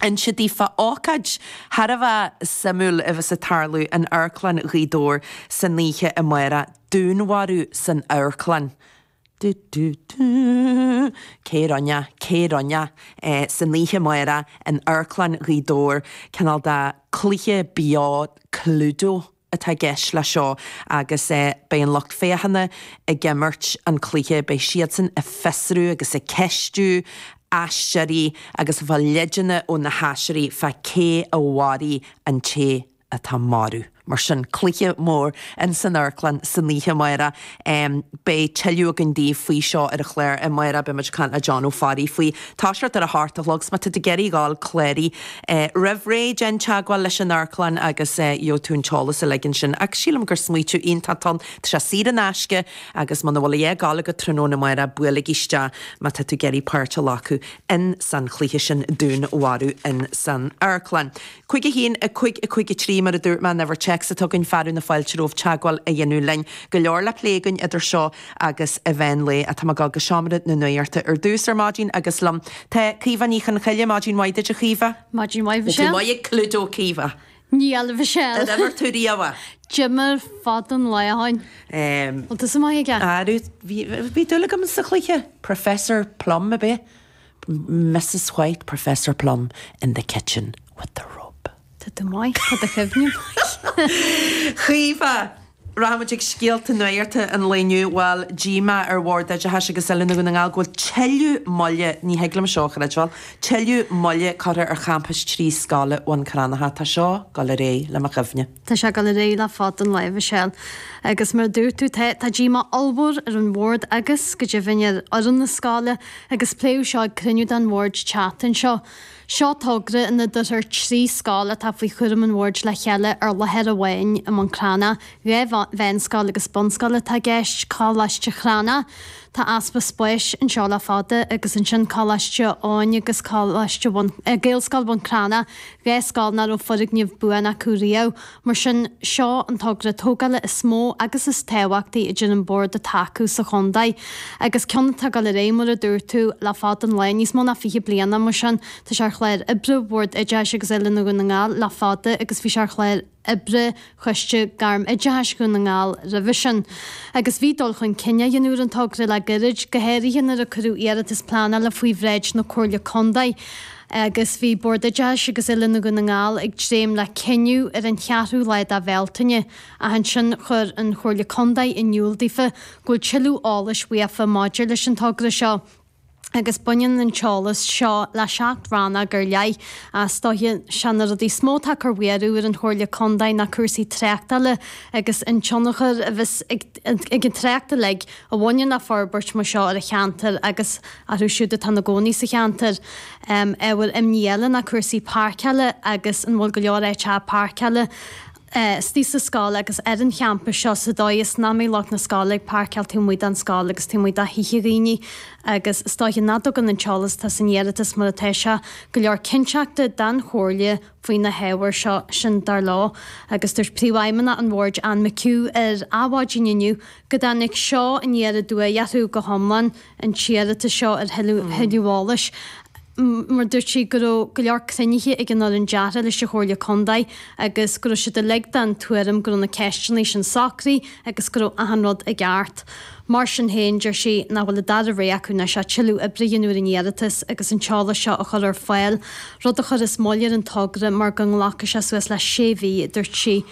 Anois díreach fá ócáid thar a bheith suimiúil a bheas ag tarlú in Amharclann Ghaoth Dobhair san oíche amárach, Dúnmharú san Amharclann. Du du du. Cé a rinne? Cé a rinne? San oíche amárach in Amharclann Ghaoth Dobhair, cineál de chluiche beo Cluedo. atá i gceist leis seo agus beidh an lucht féachana ag imirt an chluiche, beidh siadsan ag fiosrú agus ag ceistiú aisteoirí agus ag fáil leideanna ó na haisteoirí fá cé a mharaigh an té atá marbh. Mar sin, cluiche mór ins an amharclann san oíche amáireach. Beidh tuilleadh againn daoibh faoi seo ar an chlár amárach beidh muid ag caint le Dónall Ó Fearraigh faoi. Toiseacht ar a seacht a chlog agus má tá tú ag iarraidh a ghabháil clárú roimh ré déan teagmháil leis an Amharclann agus gheobhaidh tú an t-eolas uilig ansin ach sílim gur smaoiteadh iontach ann. Tá sé saor in aisce agus muna bhfuil a dhath ag gabháil agat tráthnóna amárach buailigí isteach má tá tú ag iarraidh páirt a ghlacadh in san chluiche sin dúnmharú in san Amharclann. Cúig a haon, a cúig, a cúig a trí, mar a dúirt mé an uimhir téacs agus tá fearadh na fáilte romhaibh teagmháil a dhéanamh linn. Go leor le plé againn idir seo agus an meán lae. Tá mé ag dul go Seomra na Nuachta ar dtús ar maidin agus liom tá Caoimhe Ní Chonchoille. Maidin mhaith duit, a Chaoimhe. Maidin mhaith, Mhichelle. Go maith ag Cluedo, Caoimhe. Níl, a Mhichelle. Ar imir tú riamh é? D'imir fada an lá ó shin. Bhfuil tusa maith aige? Airiú, bhí dúil agam sa chluiche. Professor Plum, ab ea? Mrs White, Professor Plum in the kitchen with the rope. Tá tú maith, tá do chuimhne maith. Caoimhe, Rachaidh muid chuig scéalta nuachta an lae inniu, bhuel, díomá ar Bhord Oideachais agus Oiliúna Dhún na nGall go bhfuil tuilleadh moille, ní thig liom seo a chreidbheáil, tuilleadh moille curtha ar Champas trí Scoile Bhun Cranncha. Tá seo dul ar aghaidh le mo chuimhne. Tá sé ag gabháil ar aghaidh le fada an lá, Mhichelle. Agus mar a dúirt tú tá tá díomá ollmhór ar an Bhord agus, go deimhin, ar fhoireann na scoile agus pléadh seo ag cruinniú den Bhord an tseachtain seo. Seo togra ina dtabharfar trí scoil atá faoi chúram an Bhoird le chéile ar láthair amháin i mBun Cranncha. Dhá mheánscoil agus bunscoil atá i gceist, Coláiste Chranna, Tá easpa spáis anseo le fada agus ansin Coláiste Chineál Eoghain agus Coláiste Bhun, eh, Gaelscoil Bhun Cranncha, dhá scoil nach raibh foirgneamh buan acu riamh. Mar sin, seo an togra tógála is mó agus is tábhachtaí a deir an Bord atá acu sa chontae. Agus ceann atá ag dul ar aghaidh, mar a dúirt tú, le fada an lae, níos mó ná fiche bliana. Mar sin, tá sé ar chlár oibre Bhord Oideachais agus Oiliúna Dhún na nGall le fada agus bhí sé ar chlár oibre Choiste Gairm-Oideachais Dhún na nGall roimhe sin agus bhí dul chun cinn á dhéanamh ar an togra le gairid, go háirithe nuair a cuireadh iarratas pleanála faoi bhráid na Comhairle Contae agus bhí Bord Oideachais agus Oiliúna Dhún na nGall ag dréim le cinneadh ar an cheathrú lá de Bhealtaine ach ansin chuir an Chomhairle Contae in iúl daofa go bhfuil tuilleadh eolais uathu maidir leis an togra seo. agus baineann an t-eolas seo le seacht rannóg ar leith. Is dóiche 'sé na rudaí is mó atá ag cur mearú ar an Chomhairle Contae ná cúrsaí tráchtála agus an tionchar a bheas ag an trácht uilig a bhaineann le forbairt mar seo ar an cheantar agus orthu siúd atá ina gcónaí sa cheantar. Ábhar imní eile ná cúrsaí páirceála agus an bhfuil go leor áiteacha páirceála. istigh sa scoil agus ar an champas seo sa dóigh is nach mbeidh lucht na scoile ag páirceáil taobh amuigh den scoil agus taobh amuigh de thithe dhaoine agus is dóiche nach dtugann an t-eolas atá san iarratas mar atá seo go leor cinnteachta don Chomhairle faoi na hábhair seo, sin dar leo. Agus dúirt Príomhfheidhmeannach an Bhoird, Anne McHugh, ar Adhmhaidin inniu go dtáinig seo aniar aduaidh orthu go hiomlán. an t-iarratas seo ar thuilleadh eolais mar dúirt sí go raibh go leor cruinnithe ag an fhoireann deartha leis an Chomhairle Contae agus go raibh siad uilig den tuairim go raibh na ceisteanna sin socraithe agus go raibh achan rud i gceart. Mar sin féin, deir sí nach bhfuil an dara rogha acu anois ach tuilleadh oibre a dhéanamh ar an iarratas agus an t-eolas seo a chur ar fáil, rud a chuirfeas moill ar an togra mar go nglacfaidh sé suas le sé mhí, a dúirt sí.